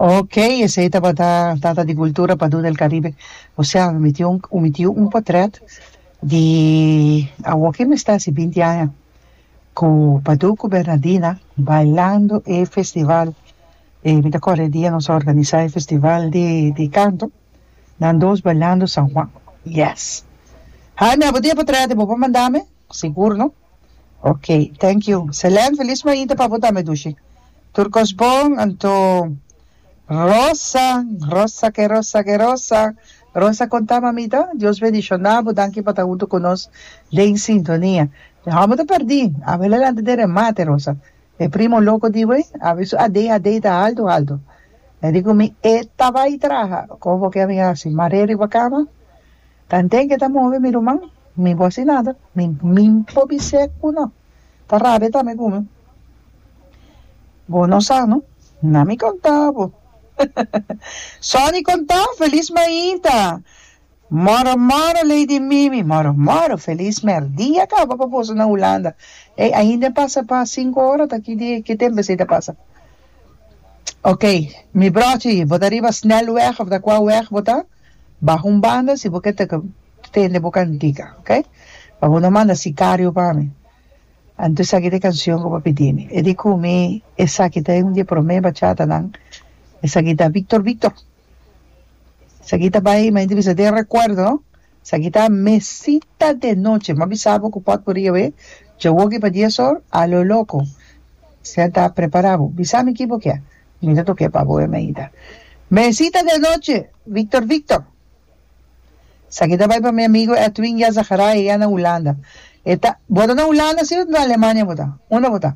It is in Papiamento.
Ok, esei tabata Tata di Cultura Padú del Caribe José, mi tin un, mi tin un potrèt di awo ke mester hasi binti aña, ku Padú ku Bernadina bailando e festival, e mi ta kòrda e dia nos a organisá e festival di di kanto. Nan dos bailando San Juan. Yes. Jaime abo dia pa trae te bo pa manda me? Sigur no? Ok. Thank you. Selen felis mainta pa bo tambe Dushi. Tur cos bon anto Rosa Rosa ke Rosa ke Rosa Rosa conta mamita Dios bendiciona bo danki pa ta hunto cu nos den sintonia. Amo ta perdi abo e la lanta den remate Rosa. E primo loco di we a vi su adei adei ta alto alto e di cu mi e ta bai traha con bo ke a mi haci mar'e riba cama tan ten ke ta move mi ruman mi bo haci nada mi mi bo bis'e cu no ta rabia ta me cumi bo no sano na mi conta bo Sonny conta feliz mainta Moro moro Lady Mimi moro moro feliz merdia caba pa boso na Hulanda ey ainda pasa pa cinco ora ta aquí di ki tempo esey ta pasa ok mi brochi bo ta riba snelweg of ta cua weg bo ta baha un banda si bo ke ta tende bo cantica ok pa bo no manda sicario pa mi anto esaki ta e cancion cu bo a pidimi e di cu mi esaki ta e un di e prome bachatanan esaki ta Victor Victor. Esaki ta bai, m'a inti bisa, den rekuerdo, esaki ta mesita de noche. M'a bisa bo ku pòt por ri awe dje woki pa dies or, a lo loko. Sea ta prepará bo. Bisa mi ki bo kia. Mi ta tok'é pa bo e meita. Mesita de noche, Victor Victor. Esaki ta bai pa mi amigu Edwin Jan Zacharai, e ya na Hulanda. E ta, Bo ta na Hulanda si o na Alemania bo ta? Unda bo ta?